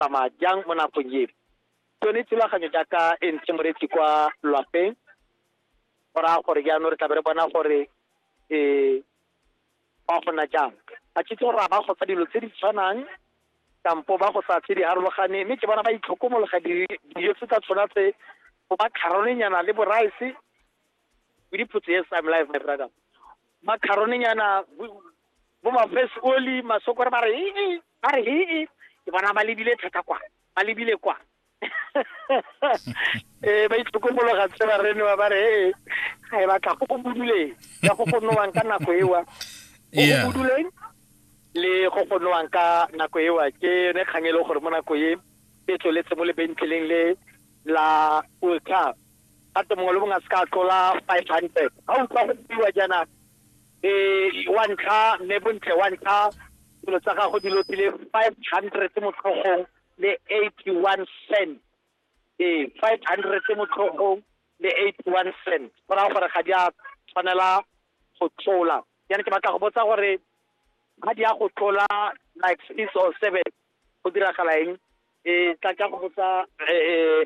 tsamaya jang mo nakong eo tsone thulaganyo jaaka e ntshe moretsi kwa lwapeng go raya gore jaanong re tlabe re bona gore um ba gona jang a tshitse gore a ba go sa dilo tse di tshwanang kampo ba go sa tse di harologaneng mme ke bona ba itlhokomologa dijo tse tsa tshwana tse go ba kgarolenyana le boraese with the put yes i'm live my brother macaroni nyana bo ma face oli masoko ba re ee ba re ee ke bona ba lebile thata kwa ba lebile kwa eh ba itlhokomologa tse ba rene ba re ee ga e batla go go buduleng ya go go nowang ka nako ewa go go buduleng le go go nowang ka nako ewa ke yone kgang e le gore mo nako e e tsweletse mo lebentleleng le la ultra ga te mongwe le mongwe a se ka tlola five hundred ga utlwa go buiwa jaana um wa ntlha mme bontle wa ntlha dilo tsa gago di lopile five hundred motlhogong le eighty one cent ee five hundred motlhogong le eighty one cent go raya gore ga di a tshwanela go tlola jaana ke batla go botsa gore ga di ya go tlola like six or seven go diragala eng um tla ka go botsa um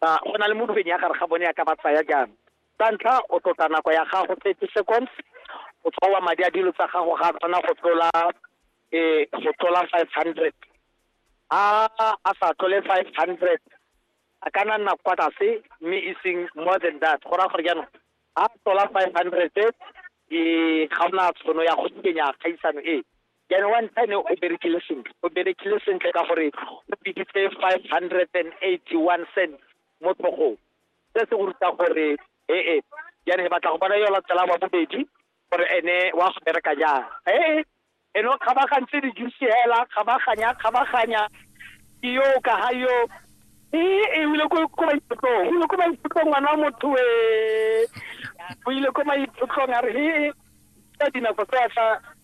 ba go na le mo lobeng ya gare ga bone ya ka ba tsaya jang sa ntlha o tlotla nako ya gago thirty seconds o tshwawa madi a dilo tsa gago ga a tshwana go tlola um go tlola five hundred a a sa tlole five hundred a ka nna nna kwa tlase mme e seng more than that go raya gore jaanong a tlola five hundred e ga ona tshono ya go kenya kgaisano e jaanong wa ntlha ne o berekile sentle o berekile sentle ka gore o biditse five hundred and eighty one cent mo tlhogong se se go ruta gore ee jaanong e batla go bona yo latela wa bobedi gore ene wa go bereka jang ee ene o kgabagantse dijusi hela kgabaganya kgabaganya ke yo ka ga yo ee e ile ko maithutlong o ile ko maithutlong ngwana wa motho e o ile ko maithutlong a re ee ka dinako tsa tla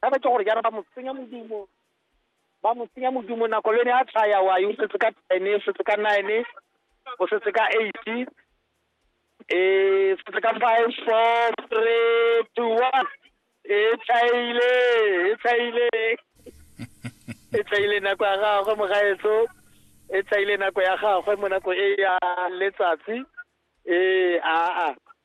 ba ba ke gore jaana ba mo tsenya modumo ba mo tsenya modumo nako le ne a tshaya wa yo setse ka ten o setse ka nine o setse ka eight um setse ka five four three two one e tshayile e tshayile e tshayile nako ya gagwe mogaetso e tshayile nako ya gagwe mo nako e ya letsatsi ee aa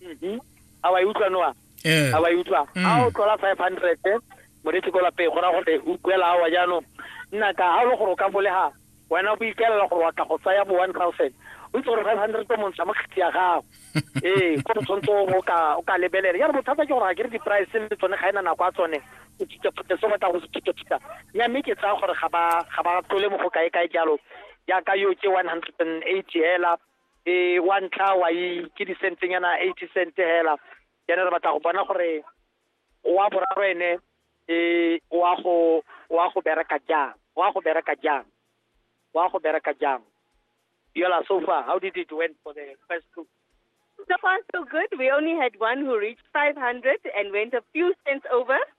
mhm. a wa e utlwa noa eh. a wa e utlwa mm. a o tlola five hundred moretsi ko lapeng go raya gore o kuela awa jaanong nna ka ga o le gore o ka bolega wena bo ikaelela gore wa tla go tsaya bo one thousand o itse gore five hundred o montsha mo kgetsi ya gago ee ko o tshwanetse o ka lebelela jalo bothata ke gore ga ke re di-price le tsone ga e na nako a tsone o thuthaphutha se batla go se thuthaphutha nya mme ke tsaya gore ga ba tlole mo go kae kae jalo jaaka yo ke one hundred and eighty hela e wa ntlha wa i ke disentenyana eighty cent hela jaanong re batla go bona gore wa boraro ene e wa go wa go bereka jang wa go bereka jang wa go bereka jang yola so far how did it went for the first two So far, so good. We only had one who reached 500 and went a few cents over.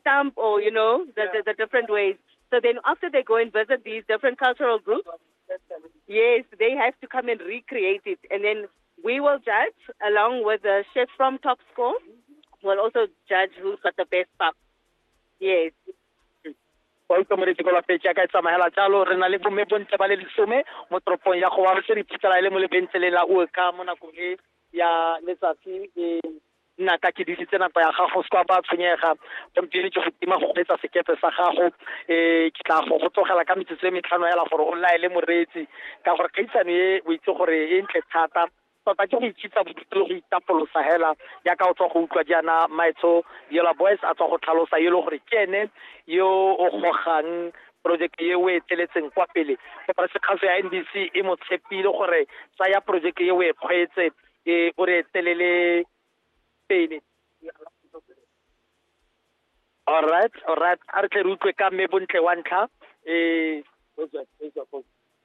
stamp or, you know, the, the, the different ways. So then after they go and visit these different cultural groups, yes, they have to come and recreate it. And then we will judge along with the chef from Top Score. We'll also judge who's got the best pap. Yes. wa ikomeretse ko lapetse ya ka e tsamaela jalo re na le bomme bontle ba le lesome mo toropong ya gowa re se re iphitlhela e le mo lebentlele la oka mo nakong e ya letsatsi e nna ka ke disitse nako ya gago se kwa ba tshwenyega gompieno ke go tima go kgweetsa sekepe sa gago um ke tla go go tlogela ka metsotso e metlhano yala gore o laele moreetsi ka gore kgaitsano e o itse gore e ntle thata tota ke go itshitsa bodutu le go itapolosa hela yaka o tswa go utlwa jaana maetsho yola boys a tswa go tlhalosa yo e le gore ke ene yo o gogang projeke e o e tseletseng kwa pele koporasi kgaso ya ndc e mo tshepile gore tsaya projeke e o e kgweetse e o re telele pele alright alright a re tle re utlwe ka mme bontle wa ntlha eh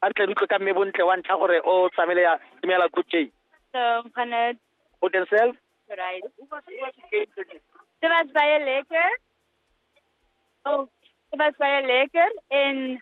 a re tle re utlwe ka mme bontle wa ntlha gore o tsamaile ya dumela good day So, Janet, o can sell right. Dit was baie lekker. Oh, dit was baie lekker en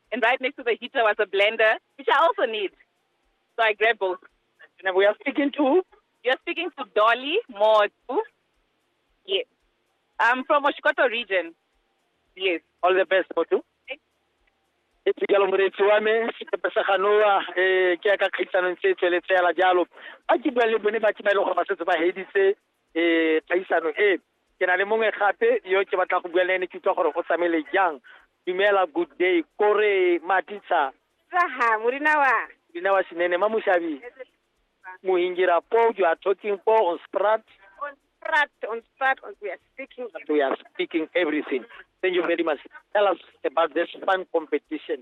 And right next to the heater was a blender, which I also need. So I grabbed both. And we are speaking to? You're speaking to Dolly Motu. Yes. I'm from Oshikoto region. Yes. All the best, Motu. e tsikelo moretsi wa me sekepe sa ganoa um eh, ke ya ka kgaisanong tse tsweletsela jalo ba ke buang le bone ba ke ba e leng gore ba setse ba heditse eh kgaisano e ke na le mongwe gape yo ke batla go bua le ene ke utlwa gore o tsamaile jang dumela good day kore matitsa Saha, murina wa. dina wa sinene ma mushabi muhingira po you are talking po on sprat On sprat, on sprat, on, we are speaking. we are speaking everything thank you very much tell us about this fun competition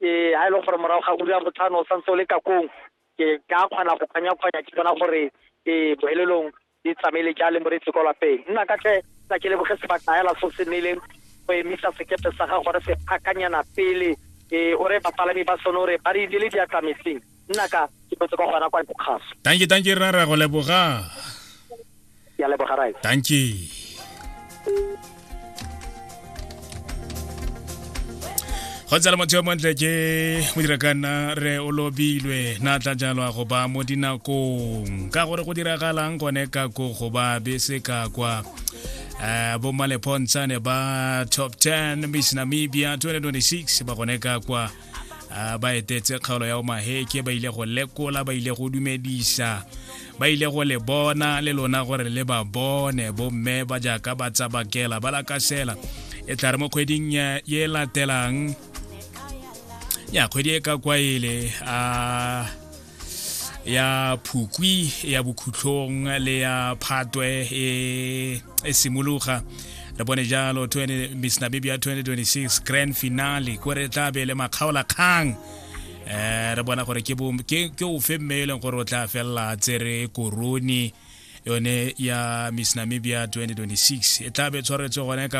ke ha e le gore morago ga ura botlhano o santse o le kakong ke ka kgona go kganya-kganya ke bona gore ke bohelelong di tsamaile ja le moretsi kwa lapeng nna ka tle tsa ke leboge sebaka hela so se nnileng go emisa sekepe sa ga gore se phakanyana pele e o re bapalami ba sone o re ba re ile le diatlametseng nna ka ke botse kwa gona kwa bokgaso tanki tanki rra ra go leboga ya leboga rai tanki go tsala motho yo montle ke modirakana re o lobilwe na tla jalwa go ba mo dinakong ka gore go diragalang gone ka ko go ba bese ka kwa um eh, bomalepontshane ba top 10 miss namibia 2026 ba gone ka kwa Ah, ba etetse kgaolo ya omaheke ba ile go lekola ba ile go dumedisa ba ile go le bona le lona gore le ba bone bomme ba jaaka ba tsabakela ba lakasela e tla re mo kgweding ye latelang ya kgwedi e ka kwaele a ah, ya phukwi ya bokhutlhong le ya phatwe e, e simologa re bone jalo miss nabibia 2026 grand finale ko re tla be le makgaola kgang um re bona gore ke ofe mme e leng gore o tla felela tsere korone yone ya miss namibia 2026 e tla be tshwaretswe gone ka